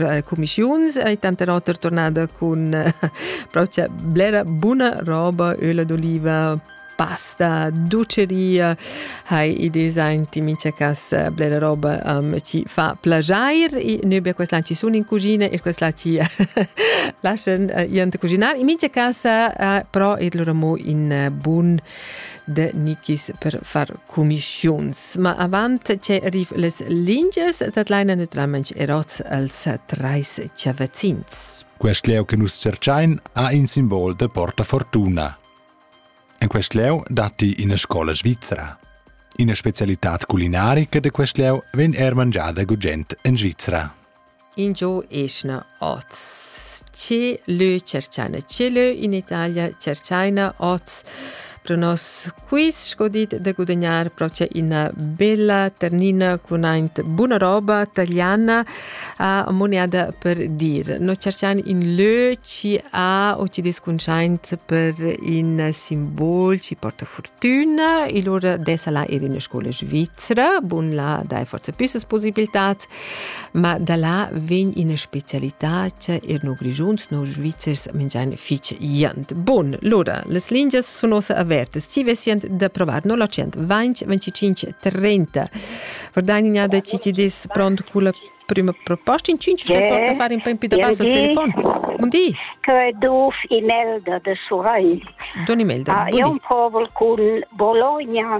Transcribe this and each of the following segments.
eh, cumischiuns e tanter oter tornada cun eh, propria blera buna roba, öla d'oliva, pasta, duceria, hai i design ti mincha cas eh, blera roba um, ci fa plagiair e noi bia quest ci sun in cucina e quest ci lascian uh, iant cucinar. In mincha casa uh, però ir lura mo in uh, bun de Nikis per far commissiuns. Ma avant che arriv les linges, dat leina naturalmente erots als treis chavazins. Quest leu che nus cercain ha in simbol de porta fortuna. En quest leu datti ina scola svizzera. Ina specialità culinarica de quest leu vegn er mangiada gugent en Svizzera. Ingio eschna oz? Che lö tscherchaina? Che lö in Italia tscherchaina oz pro nos quiz sco dit da gudagnar procha üna bella ternina cun aint buna roba taliana a moneada per dir. No tscherchain ün lö chi ha o chi descuntschaint per ün simbol chi porta furtüna e lura dessa la eir in la scoula svizra. Bun, là dai forsa püssas pusibiltats Ma da là vegn ina specialità che er no Grischuns, no Svizzers mingian fich jant. Bun, lura, las lingias sun ossa avertas. Ci vessient da provar no la 125 25 30. Verdagnina da ci ti des pront cu la prima proposta in 5 c'è sorta fare un po' in più da basso il telefono. Un di? Che duf Imelda de Surai. Don Imelda. Ah, io un povel col Bologna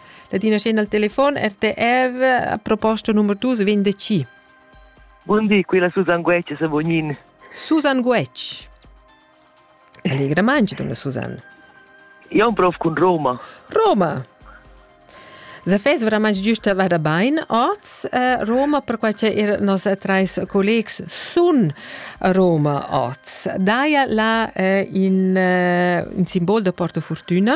Ladina scena al telefon RTR a proposto numero 2 vendici. Buondì, qui la Susan Guecci se vognin. Susan Guecci. Allegra mangi, donna Susan. Io un prof con Roma. Roma. Se fes veramente giusta vada bene oz uh, Roma per qual che nos trais collegs sun Roma oz. Daia la uh, in, uh, in simbol da Porto Fortuna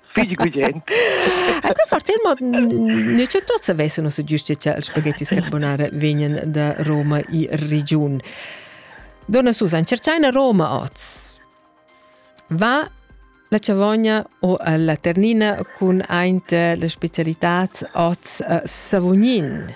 figli gugent. Ecco, forse il modo noi c'è tutti avessero su giustizia il spaghetti carbonara vegnan da Roma e region. Donna Susan, cercai Roma oz. Va la Chavogna o la Ternina cun aint la specialità oz Savognin.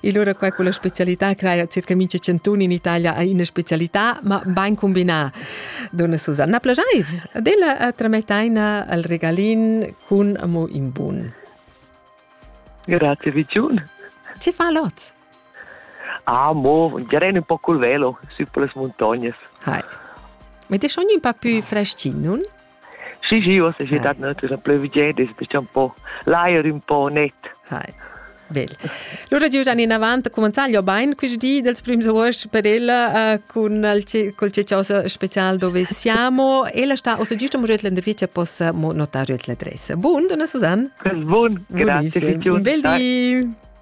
E allora qua con la specialità crea circa mincha cantun in Italia ha ina specialità, ma ben combinà. Donna Susanna Plajair, adella tramettaina al regalin cun amo in bun. Grazie Vigiun. Ci fa lot? Ah, mo, gerei un po' col velo, su per le montagne. Hai. Ma ti schon un po' più freschin, non? Sì, sì, uossa es dat natüra pleuvigieda, es bestia un po l'ajer ün po net. Hai. Bel. Lura giujan inavant a cumenzar gli bain quist di dels prims agost per ella uh, cun il col ciosa special dove siamo. Ella sta ossa giusto morüt l'intervista possa mo notare l'adressa. Bun, donna Susanne. Bun, grazie. Bel di.